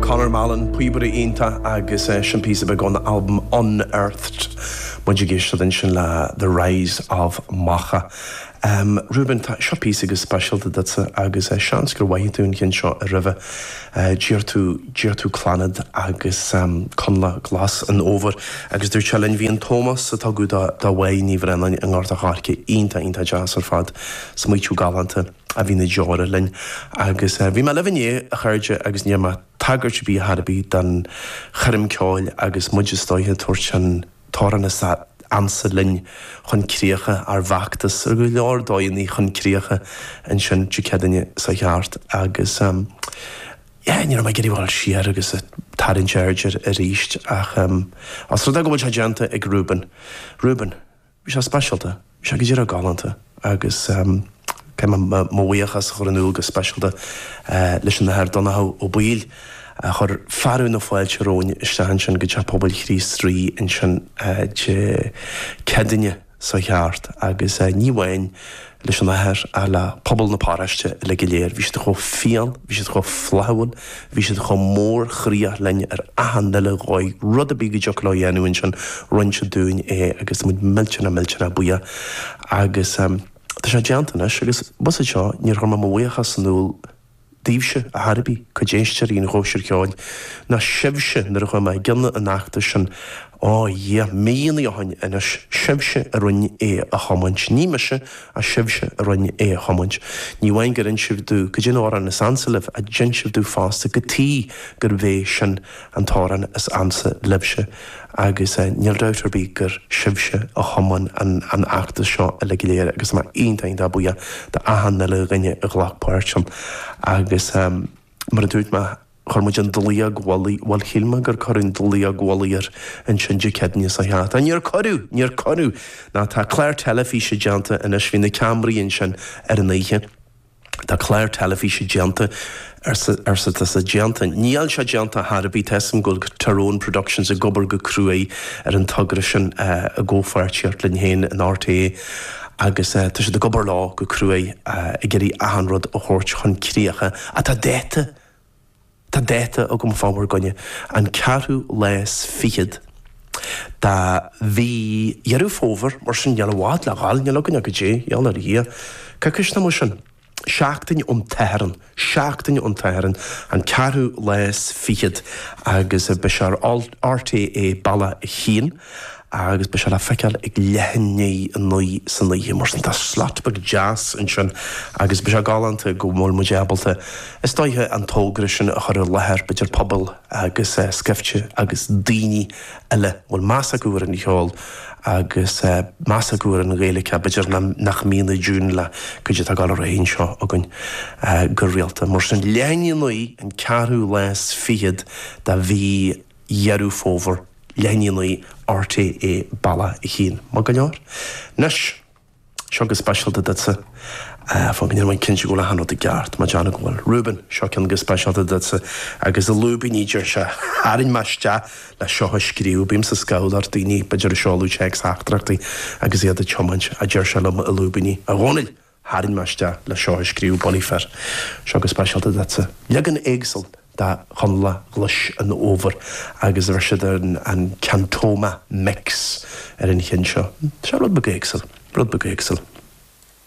Conor Mallon, píobaire iontach agus é sin píosa beag ón albam Unearthed. Muid ag éisteacht ansin le The Rise of Macha. Ruben, tá, seo píosa go speisialta duitse agus seans gur mhoithigh tú an ceann seo aroimhe. D'iarr tú, d'iarr tú Clannad agus Coinleach Glas an Fhómhair agus dúirt sé linn, bhí an t-ómós a tugadh do Mhoya Ní Bhraonáin i nGort a' Choirce iontach, iontach deas ar fad. Smaoitiú galánta. a bhí na deora linn agus bhí mé libh inné a chairde agus ní dhearn mé tagairt ar bith ar chor ar bith don choirm cheoil agus muid is dóiche ag tabhairt an t-amhrán is ansa linn chun críche ár bhfeachtas ar go leor dóigheannaí chun críche ansin Dé Céadaoine seo chuaigh thart agus yeah ní raibh mé ag iarraidh dul siar agus tarraingt aird air arís ach os rud é go bhfuil sé déanta ag Ruben Ruben Bhí sé speisialta. Bhí sé go díreach galánta agus caithfidh mé mo bhuíochas a chur in iúl go speisialta leis an Athair Donnchadh Ó Baoill a chuir fearadh na fáilte romhainn isteach ansin go Teach Pobail Chríost Rí ansin Dé Céadaoine seo chuaigh thart agus ní amháin leis an athair ach le pobal na paróiste uile go léir. Bhí siad chomh fial, bhí siad chomh flaithiúil, bhí siad chomh mórchroíoch linn ar achan uile dhóigh. Rud ar bith go dtiocfadh leo a dhéanamh ansin, rinn siad dúinn é agus muid millteanach millteanach buíoch. Agus tá sé déanta anois agus bhfuil 'fhios agat seo, níor chuir mé mo bhuíochas in iúl daoibhse, ar chor ar bith, cuid éisteoirí an Chóisir Cheoil, ná sibhse nuair a chuaigh mé i gcionn an fheachtais sin, á Dhia, míonnaí ó shin anois, sibhse a rinne é a thiomáint, ní mise, ach sibhse a rinne é a thiomáint. Ní amháin gur inis sibh domh caidé an t-amhrán is ansa libh, ach d'inis sibh domh fosta cad chuige gurb é sin. An t-amhrán is ansa libhse agus níl dabht ar bith gur sibhse a thiomáin an feachtas seo uile go léir agus tá mé iontach iontach buíoch do achan uile dhuine a ghlac páirt ann agus mar a dúirt mé chuir muid an dlaíóg mhullaigh, bhuel shíl mé gur cuireadh an dlaíóg mhullaigh air ansin Dé Céadaoine seo caite, níor cuireadh! Níor cuireadh! Ná tá clár teilifíse déanta anois, bhí na ceamaraí ansin ar an oíche. Tá clár teilifíse déanta, arsa tusa. Déanta? Níl sé déanta ar chor ar bith. Tá 'fhios a'm go bhfuil Tyrone Productions ag obair go cruaidh ar an togra sin i gcomhpháirtíocht linn féin in RTÉ agus tá siad ag obair leo go cruaidh ag iarraidh achan rud a thabhairt chun críche ach tá dáta. Tá dáta agam fá bhur gcoinne, an ceathrú lá is fichead de mhí Dheireadh Fómhair, mar sin níl i bhfad le ghabháil, níl againn ach caidé, a gheall ar Dhia, coicís nó mar sin? seachtain ón tSatharn, seachtain ón tSatharn an ceathrú lá is fichead agus beidh sé ar RTÉ Bealach 1. agus beidh sé le feiceáil leath i ndiaidh a naoi san oíche mar sin tá slot beag deas ansin agus beidh sé galánta go bhfuil muid ábalta is dóiche an togra sin a chur i láthair idir pobal agus scaifte agus daoine eile bhfuil meas acu ar an cheol agus meas acu ar an nGaeilge b'fhéidir nach mbíonn i dtiúin le cuidi atá ag dul ar aghaidh anseo againn go rialta mar sin leath i ndiaidh a naoi an ceathrú lá is fichead de mhí Dheireadh Fómhair, leath i ndiaidh a naoi RTÉ bealach a haon, maith go leor? Anois, seo go speisialta duitse. Fan go ndéanfaidh mé cinnte go bhfuil achan rud i gceart, má déarfainn go bhfuil. Reuben, seo ceann go speisialta duitse, agus i lúibíní deir sé, Tharraing mé isteach le seo a scríobh, bím ag scolladh ar daoine, b'fhéidir, ag seoladh téacsteachtaireachtaí agus iad ag tiomáint, a deir sé liom i lúibíní. A Dhónaill! Tharraing mé isteach le seo a scríobh Bulaí fir. Seo go speisialta duitse. Leagan éagsúil de Chonnla Ghlais an Fhómhair agus bhris siad an Cantoma Mix ar an cheann seo. Seo rud beag éagsúil. Rud beag éagsúil.